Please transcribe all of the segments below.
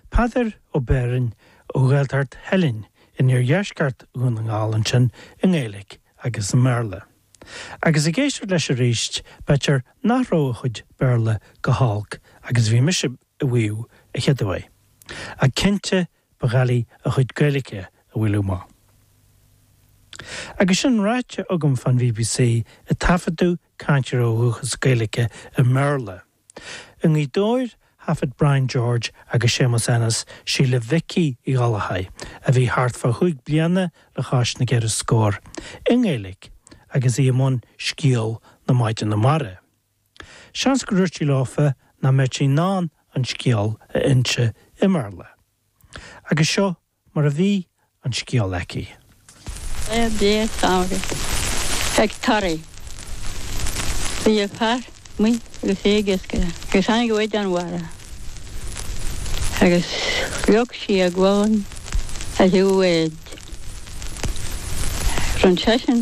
Peadar Ó Beirn ó Ghaeltacht Theilinn in iardheisceart Dhún na nGall ansin i nGaeilge agus i mBéarla. Agus ag éisteacht leis arís b'fhéidir nach raibh a chuid Béarla chomh holc agus bhí mise a mhaíomh a chéaduair. Ach cinnte ba dhoiligh a chuid Gaeilge a bhualadh amach. Agus sin ráite agam fán BBC ag taifeadadh cainteoirí dúchais Gaeilge i mBéarla, I nGaoth Dobhair thaifead Brian George agus Séamus Ennis Síle Mhicí Uí Ghallchobhair, a bhí thart fá chúig bliana le cois na gceithre scór, i nGaeilge agus í i mbun Scéal na Maighdine Mara. Seans gur dhúirt sí leofa nach mbeadh sí in ann an scéal a inse i mBéarla. Agus seo mar a bhí an scéal aici. Ar 10ú Feictear Taraí. Bhí fear amuigh agus é ag iascaireacht agus tháinig maighdean mhara agus leag sí a gualainn ar thaobh a bháid. D'fhan seisean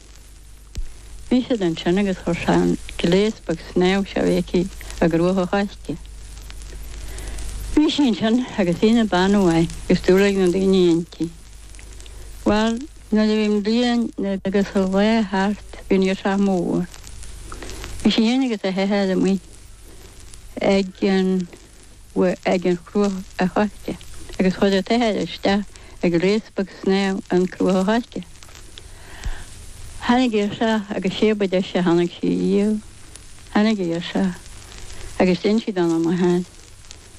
Bhí siad ansin agus chuir sé an gléas beag snámha seo aici i gcruach an choirce. Bhí sí ansin agus í ina bean mhaith agus dúil ag na daoine inti. Bhuel, nuair a bhí an bhliain agus an lá thart bhí an ghirseach mór. Bhí sí féin agus a hathair amuigh ag an. amuigh ag an chruach an choirce agus chuir an t-athair isteach an gléas beag snámha an chruach an choirce. Tháinig an ghirseach agus sé ba deis a tháinig sí a dhíol. Tháinig an ghirseach agus d'inis sí dona máthair.